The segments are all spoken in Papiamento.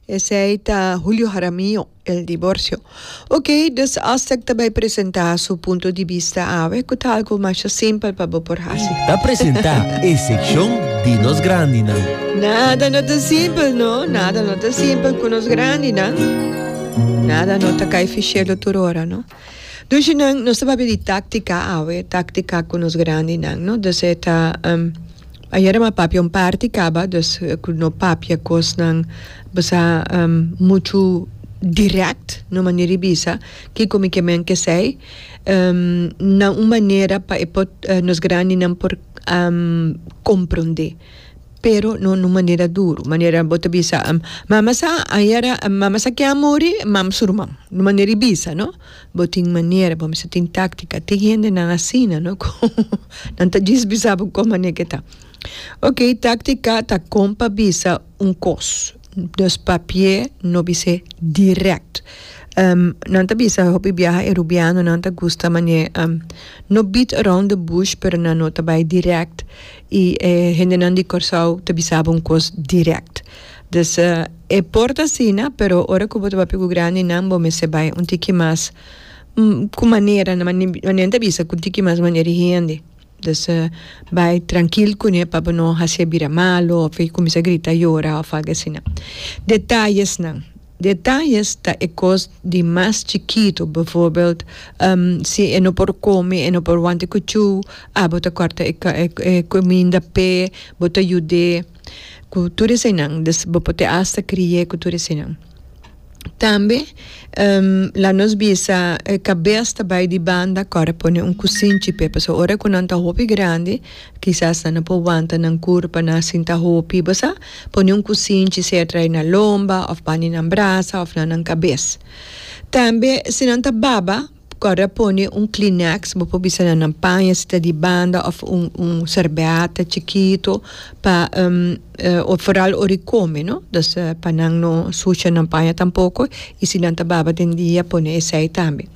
Esey ta Julio Jaramillo, el divorcio. Ok, dus Aztec ta bay presenta su punto di bista awe cu ta algo masha simpel pa bo por haci. Ta presenta e seccion di nos grandinan. Nada no ta simpel no, nada no ta simpel cu nos grandinan. Nada no ta cay fi cielo tur ora no. Dushinan nos ta papia di táctica awe, táctica cu nos grandinan, no? Dus e ta, um, ayera mi a papia un parti caba, dus cu no papia cosnan bisha, um, muchu direct, na un manera di bisa kico mi ke men kesey, um, na un manera pa e por, nos grandinan por, um, comprende. Pero no nun manera duru, manera bo ta bisa, Mama sa ayara, mama sa kier a muri, mam su ruman. Nun manera i bisa, no? Bo tin manera, bo mester tin táctica. Tin hendenan asina, no? Cu nan ta djis bisa bo con manera ke ta. Ok, táctica ta con pa bisa un cos. Nos papia no bis'é direct. Nan ta bisa hopi biaha e Rubianonan ta gusta manera, no beat around the bush, pero nan no ta bay direct. y e hendenan di Corsou ta bisaba un cos direct. Dus e por ta asina pero ora cu bo ta papia cu grandinan bo mester bay un tiki mas cu manera na manera ta bisa cu un tiki mas manera di hende. Dus bay trankil cune pa bo no haci e bira malo of e cuminsa grita yora of algo asina. Detayesnan. Detalles ta e kos di mas chikitu, bevoorbeeld, si e no por kome, e no por wante ku chou, a bo ta kòrta e kuminda p'e, bo ta yud'é ku tur eseinan, des bo pot'é asta kri'é ku tur eseinan. Tambe la nos bisa e kabes ta bai di banda kòrda pone un kusinchi p'e pasobra ora ku nan ta hopi grandi kisas nan no por wanta nan kurpa, nan a sinta hopi, bo sa. Pone un kusinchi sea trae na lomba of bani nan brasa of na nan kabes. Tambe si nan ta baba kòrd'a pone un kleeneks, bo por bisa na nan paña si ta di banda of un un serbèt chikito pa of foral ora e kome no, dus pa nan no sucha nan paña tampoko i si nan ta baba den dia pone esei tambe.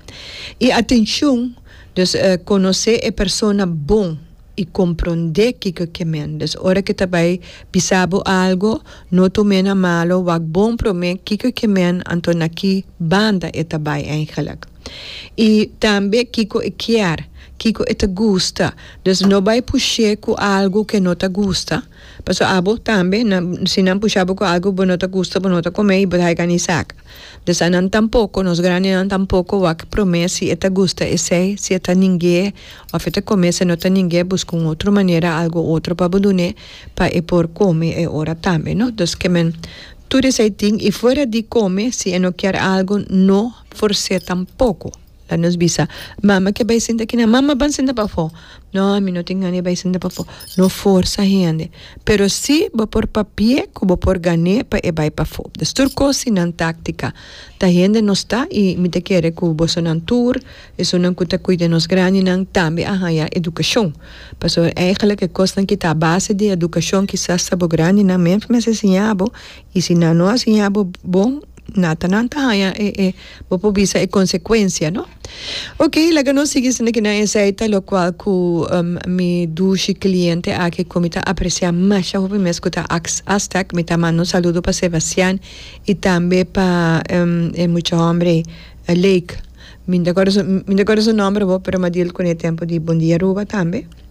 I atenshon, dus konosé e persona bon. I komprondé kiko ke mende. Des ora ke ta bai bisa bo algo, no tum'é na malo, wak bon promé kiko ke mende, anto na ki banda e ta bai eigenlik. I tambe kiko e kier, kiko e ta gusta. Des no bai push'é ku algo ke no ta gusta. Paso abo tambe nan si nan pusha bo cu algo bo no ta gusta bo no ta come y bo ta haiga ni saca. Des a nan tampoco, nos grandenan tampoco wak prome si e ta gusta esey, si e ta ningue of e ta come si no ta ningue busca un otro manera algo otro pa bo dune pa e por come e ora tambe no. Dos ke men tur esey tin y fuera di come si e no kier algo no force tampoco. La nos bisa, Mama ke bai sinta aki nan. Mama ban sinta pafó. No, mi no tin gana e bai sinta pafó. No forsa hende. Pero si bo por papi'é ku bo por gan'é pa e bai pafó. Des tur kos tin nan táktika. Ta hende nos ta i mi ta kere ku bosonan tur, esunnan ku ta kuida nos grandinan, tambe a haña edukashon. Pasobra, èigelik, e kosnan ku ta base di edukashon kisas ta bo grandinan mester mester siña bo. I si nan no a siña bo bon, na ta nan ta haña e e bo por bisa e consecuencia no. Ok laga nos sigui sende aki nan esey ta locual cu mi dushi cliente aki cu mi ta aprecia masha hopi mes cu ta ax Aztec mi ta manda un saludo pa Sebastian y tambe pa e mucha hombre Lake mi no ta acorda mi no ta acorda su nomber bo pero mi a dil cune tempo di Bon Dia Aruba tambe.